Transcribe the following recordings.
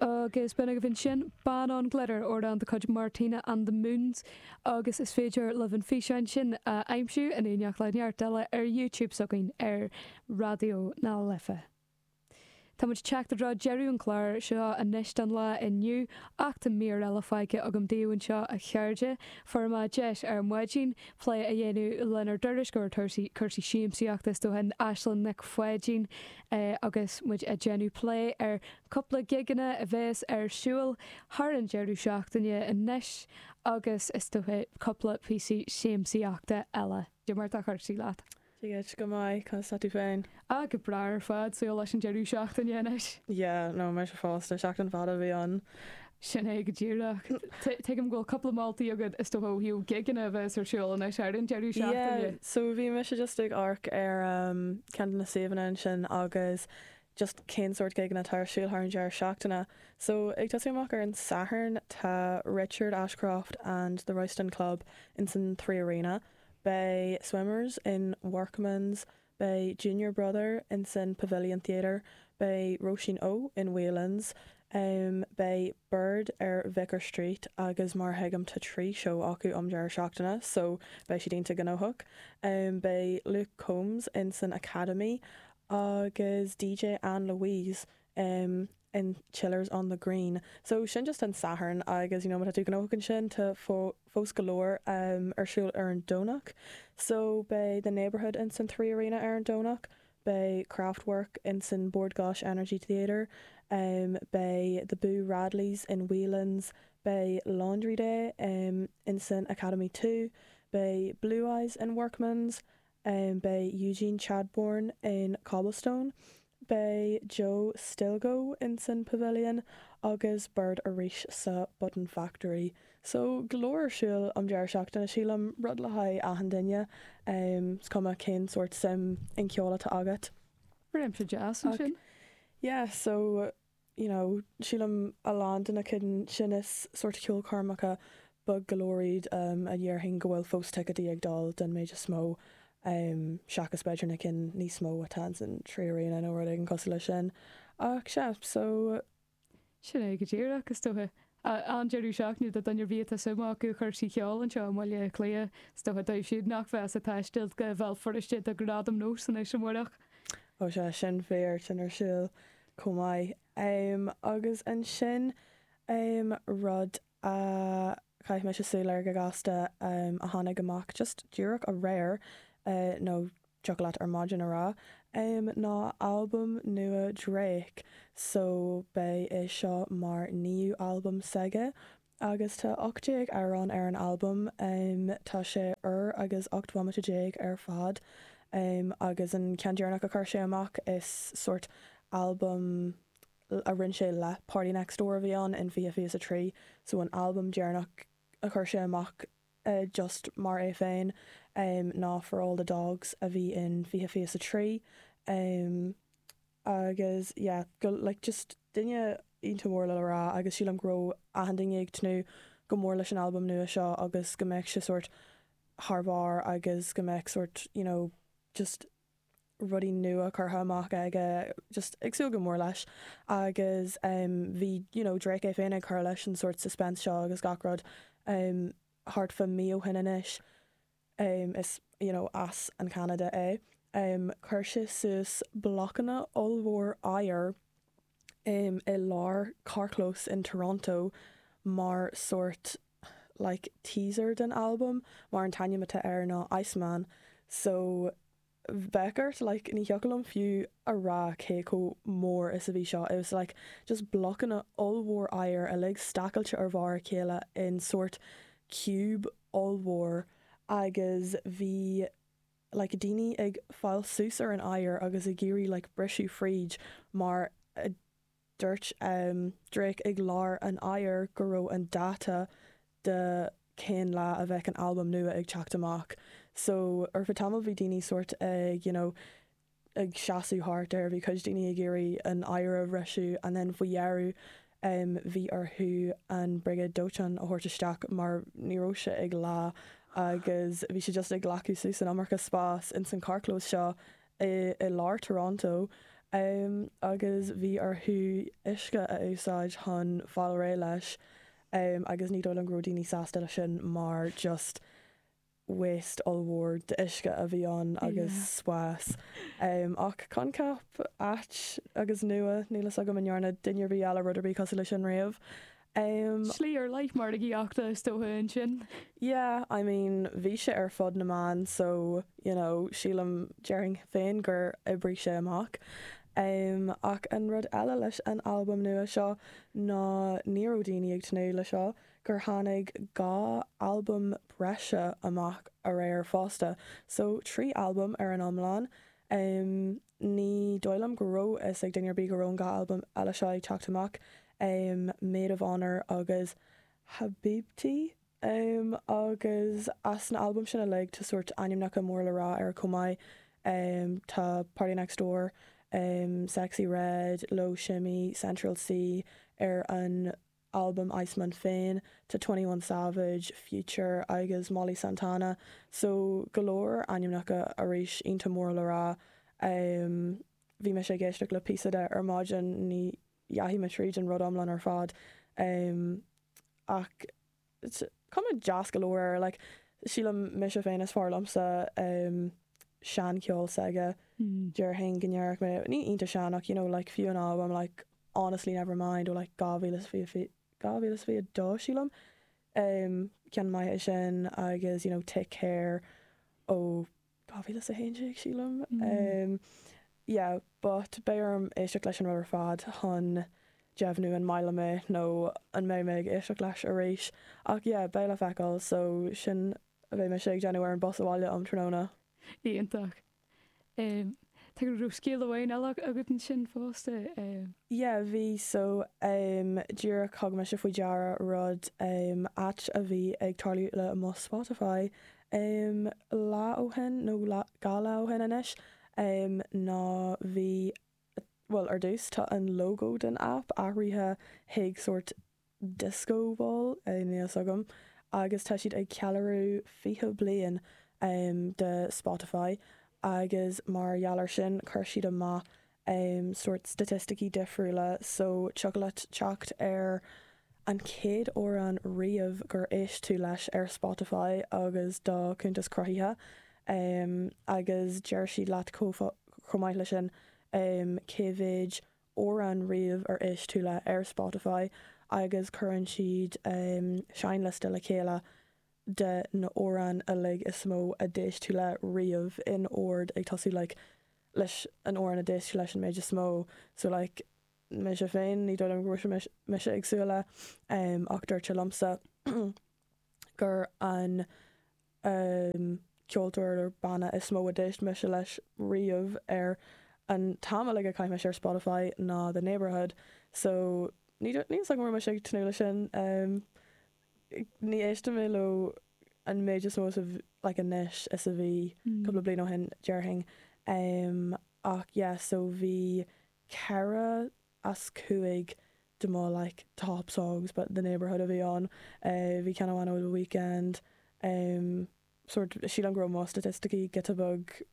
Agus b'in agaibh ansin, Ban on Glitter, amhrán de chuid Martina and the Moons, agus is féidir libh an físeán sin a aimsiú in éineacht le neart eile ar YouTube s'againn ar Raidió na Life. Táimid ag teacht i dtreo deireadh an chláir seo anois don lá inniu, ach tá mír eile faighte agam daoibh anseo a chairde. Fuaireamar deis ar maidin plé a dhéanamh lenár dtuairisceoir cúrsaí siamsaíochta is dócha, Aislinn Nic Pháidín, agus muid ag déanamh plé ar cúpla gigeanna a bhéas ar siúil thar an deireadh seachtaine anois agus is dócha cúpla píosaí siamsaíochta eile. Cad é mar atá cúrsaí leat. Dia duit, go maith, conas tá tú féin? Ah, go breá ar fad, súil leis an deireadh seachtaine anois. Yeah, no, mise fosta, seachtain fada a bhí ann. Sin é go díreach. Tuigim go bhfuil cúpla moltaí agat is dócha ó thaobh gigeanna a bheas ar siúl anois ar an deireadh seachtaine. Yeah, so bhí mise just ag amharc ar ceann de na suíomhanna ansin agus just cén sórt gigeanna atá ar siúl thar an deireadh seachtaine. So ag tosú amach ar an Satharn tá Richard Ashcroft and the Royston Club ins an Three Arena, beidh Swimmers in Workman's Beidh Junior Brother in san Pavilion Theatre, beidh Róisín O in Whelan's, em beidh Bird ar Vicar Street agus mar a thuigim tá trí seó acu um deireadh seachtaine so beidh siad iontach gnóthach. Em beidh Luke Combs in san Academy agus DJ Ann Louise em in Chaplin's on the green so sin just an Satharn agus you know má tá tú gnóthach ansin tá fo fós go leor em ar siúl ar an Domhnach so beidh the neighbourhood in san three arena ar an Domhnach beidh Kraftwerk in san Bord Gáis Energy Theatre em beidh the Boo Radleys in Whelan's beidh Laundry Day em in san Academy Two beidh Blue Eyes in Workman's Beidh Eugene Chadbourne in Cobblestone, beidh Joe Stilgo insan Pavilion agus Bird arís sa Button Factory. So, go leor ar siúl an deireadh seachtaine, sílim, rud le haghaidh achan duine, is cuma cén sórt suim in ceol atá agat. Yeah, so. you know sílim a lán de na cinn sin is sórt ceolchoirmeacha beag go leor iad a déarfainn go bhfuil fós ticéadaí ag dul den méid is mó seachas b'fhéidir na cinn níos mó atá ins an Three Arena nó rud éigin cosúil le sin ach sea so sin é go díreach is dócha An-deireadh seachtaine do dhuine ar bith atá suim acu i chursaí cheoil anseo i mBaile Átha Cliath. Is dócha dóibh siúd nach bheas ag taisteal go Bhéal Feirste do Gradam Nós anois amáireach. Ó sea, sin fíor, sin ar siúl chomh maith. Agus ansin rud a chaith mise súil air go gasta a tháinig amach just díreach aréir nó deacair leat ar maidin ar ais. Em ná albam nua Drake so beidh é seo mar naoú albam s'aige agus tá 18 amhrán ar an albam. Tá sé uair agus 18 bhomaite ar fad agus an ceann deireanach a chuir sé amach is sórt albam a rinne sé le PartyNextDoor a bhí ann in 2023 so an albam deireanach a chuir sé amach just mar é féin, ná For All the Dogs a bhí in 2023, agus yeah, go, like, just duine iontach mór le le rá agus sílim go raibh achan duine ag tnúth go mór leis an albam nua seo agus go mbeadh sé sórt thar barr agus go mbeadh sórt, you know, just. rudaí nua curtha amach aige just ag súil go mór leis agus em bhí you know Drake é féin ag cur leis an sórt suspense seo agus gach rud em thart fá mí ó shin anois em is you know as an Canada é em chuir sé suas blocanna ollmhór oighir em i lár carrchlós in Toronto mar sórt like teaser den albam mar an t-ainm atá air ná Iceman so bheadh ort like ní thiocfadh liom fiú a rá cé chomh mór is a bhí seo it was like just blocanna ollmhór oighir uilig stacailte ar bharr a chéile in sórt cube ollmhór agus bhí like daoine ag gabháil suas ar an oighear agus ag iarraidh like briseadh fríd mar a Dúirt Drake ag lár an oighir go raibh an dáta de cén lá a bheadh an albam nua ag teacht amach so ar feadh tamaill bhí daoine sórt ag you know ag seasadh thart air, bhí cuid daoine ag iarraidh an oighear a bhriseadh and then faoi dheireadh bhí orthu an Briogáid Dóiteáin a thabhairt isteach mar ní raibh sé ag leá agus bhí siad just ag glacadh suas an iomarca spás insan carrchlós seo i lár Toronto agus bhí orthu uisce a úsáid chun fáil réidh leis agus ní dóigh liom go raibh daoine sásta leis sin mar just waste ollmhór d'uisce a bhí ann agus spás ach coincheap ait agus nua, níl fhios agam an ndearna duine ar bith eile rud ar bith cosúil leis sin riamh. Um. Slí ar leith margaíochta is dócha ansin. Yeah, I mean bhí sé ar fud na meán so you know sílim, déarfainn féin gur oibrigh sé amach. Um ach an rud eile leis an albam nua seo ná ní raibh daoine ag tnúth le seo, gur tháinig dhá albam breise amach aréir fosta, so trí albam ar an iomlán. Um. Ní dóigh liom go raibh a fhios ag duine ar bith go raibh an dhá albam eile seo ag teacht amach, Maid of Honour agus Habibti, agus as na albaim sin uilig tá sórt ainmneacha mór le rá air chomh maith, tá Party Next Door, Sexyy Red, Loe Shimmy, Central Cee ar an. albam Iceman féin, tá 21 Savage, Future agus Molly Santana so go leor ainmneacha arís iontach mór le rá. Bhí mise ag éisteacht le píosa de ar maidin, ní dheachaigh mé tríd an rud iomlán ar fad ach Cuma deas go leor air like. Sílim mise féin is fearr liomsa an seancheol s'aige. Déarfainn go ndéanann sin mé iontach sean ach you know like fiú an albam like Honestly Nevermind ó like 2022 sílim ceann maith é sin agus you know Take Care ó 2011 sílim yeah but beidh orm éisteacht leis an rud ar fad chun deimhniú an maith liom é nó an mbeidh mé ag éisteacht leis arís ach yeah beidh le feiceáil so sin a bheidh mise ag déanamh ar an bus abhaile um tráthnóna. Iontach. Em tá go raibh scéal amháin eile agat ansin fosta eh? Yeah bhí so em díreach thug mise faoi deara rud em ait a bhí ag tarlú le mo Spotify Um lá ó shin, nó lá, dhá lá ó shin anois, um ná bhí, bhuel ar dtús tá an logo den aip athraithe chuig sórt disco ball, eh níl a fhios agam, agus tá siad ag ceiliúradh 20 bliain um de Spotify agus mar gheall ar sin chuir siad amach em sórt staitisticí difriúla so tiocfadh leat teacht ar an chéad amhrán riamh gur éist tú leis ar Spotify agus dáta cuntas cruthaithe em agus deir siad leat chomh chomh maith leis sin em cé mhéid amhrán riamh ar éist tú le ar Spotify agus cuireann siad em seinnliosta le chéile de na hamhráin uilig is mó a d'éist tú le riamh in ord ag tosú like leis an amhrán a d'éist leis an méid is mó so like mise féin, ní dóigh liom go raibh mise ag súil le, ach dúirt sé liomsa gur an ceoltóir nó banna is mó a d'éist mise leis riamh ar an t-am uilig a chaith mise ar Spotify ná The Neighbourhood so ní dóigh liomsa go raibh mise ag tnúth le sin. Ní éistim leo an méid is mó, like, anois is a bhí cúpla bliain ó shin, déarfainn. Ach yeah, so bhí ceithre as cúig de mo, like, top songs ba The Neighbourhood a bhí ann. Bhí ceann amháin ó The Weeknd, sórt, sílim go raibh mo staitisticí giota beag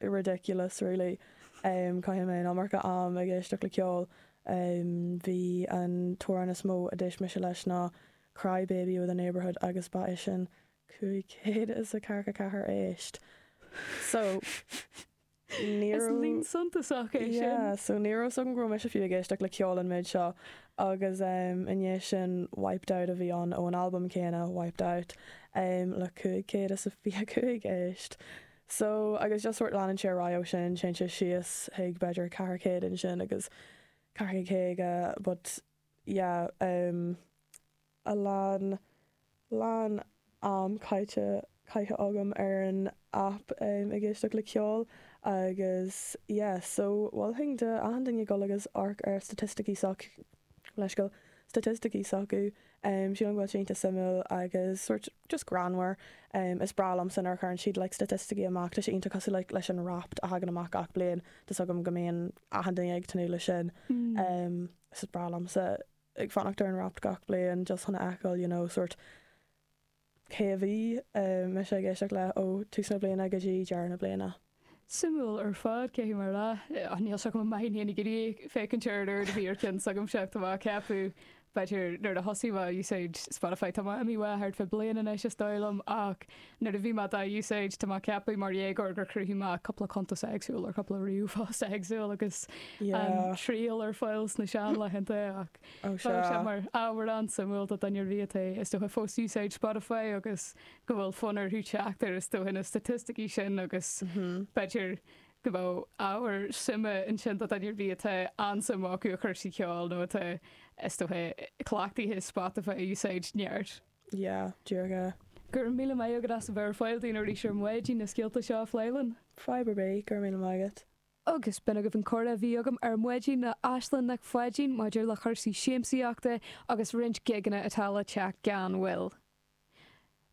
ridiculous really chaith mé an iomarca am ag éisteacht le ceol ba é an t-amhrán is mó a d'éist mise leis ná Cry Baby by The Neighbourhood agus ba é sin cúig chéad is a ceathracha ceathair éist so ní raibh a fhios agam go raibh mise fiú ag éisteacht le ceol an méid seo agus i ndiaidh sin Wiped Out a bhí ann ón albam céanna, Wiped Out, le cúig chéad is a fiche a cúig éist. So, agus just sórt leanann sé ar aghaidh ó sin, téann sé síos chuig b'fhéidir ceithre chéad ansin agus ceithre chéad caoga but yeah. a lán lán am caite caithe agam ar an aip ag éisteacht le ceol agus yeah so mholfainn d'achan duine dul agus amharc ar staitisticí s'acu le feiceáil staitisticí s'acu sílim go bhfuil sé iontach suimiúil agus sort just greannmhar is breá liomsa nuair a chuireann siad like staitisticí amach tá sé iontach cosúil like leis an Wrapped a thagann amach gach bliain tá 's agam go mbíonn achan duine ag tnúth leis sin mm. is breá liomsa ag fanacht ar an Wrapped gach bliain just chun a fheiceáil you know sort cé a bhí mise ag éisteacht leis ó tús na bliana go dtí deireadh na bliana. Suimiúil ar fad cé mar atá. Níl a fhios agam bhí mé féin ag iarraidh féachaint ar an oiread a bhí ar ceann s'agamsa tá mé ag ceapadh b'fhéidir nuair a thosaigh mé ag úsáid Spotify tá mé imithe uaidh thart faoi bhliain anois is dóigh liom ach Nuair a bhí mé dá úsáid, tá mé ag ceapadh mar dhéagóir gur chruthaigh mé cúpla cuntas éagsúil ar cúpla ríomhphost éagsúil agus an Yeah. triail ar fáil sna seanlaethanta ach Ó tá sé sé. mar ábhar an-suimiúil do dhuine ar bith atá is dócha fós ag úsáid Spotify agus go bhfuil fonn orthu teacht ar is dócha na staitisticí sin agus b'fhéidir go bhfuil ábhar suime ansin do dhuine ar bith atá an-suim acu i gcúrsaí ceoil nó atá is dócha cleachtaithe le Spotify a úsáid neart. yeah díreach é. Go raibh míle maith agat as a bheith ar fáil dúinn arís ar maidin na scéalta seo a phlé linn. Fadhb ar bith, go raibh míle maith agat. Agus b'in agaibh an comhrá a bhí agam ar maidin le Aislinn Nic Pháidín maidir le cúrsaí siamsaíochta agus roinnt gigeanna atá le teacht gan mhoill.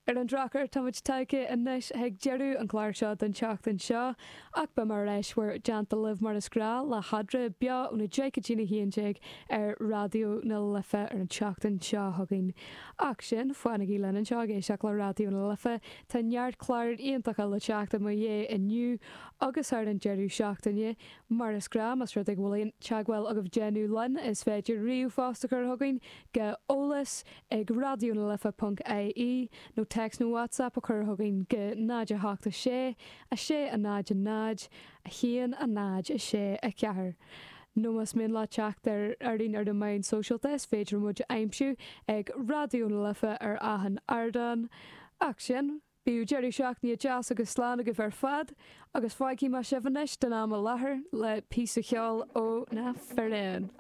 Ar an drochuair, táimid tagtha anois chuig deireadh an chláir seo don tseachtain seo. Ach beidh mé ar ais in bhur dteannta libh mar is gnách le hEadra, beo ó na Décatine 11 ar Raidió na Life ar an tseachtain seo chugainn. Ach go dtí sin, fanaigí linn anseo ag éisteacht le Raidió na Life, tá neart cláir iontacha le teacht i mo dhiaidh inniu agus thar an deireadh seachtaine. Mar is gnách, más rud é go bhfuil aon teagmháil agaibh le déanamh linn, is féidir ríomhphost a chur chugainn go eolas ag raidionalife.ie nó text nó WhatsApp a chur chugainn go 0 8 6 6, 0, 0, 1, 0, 6, 4 nó más mian leat teacht orainn ar na meáin sóisialta is féidir muid a aimsiú ag Raidió na Life ar achan ardán. Ach sin, bíodh deireadh seachtaine deas agus slán agaibh ar fad agus fágfaidh mé sibh anois don am i láthair le píosa ceoil ó na firéin.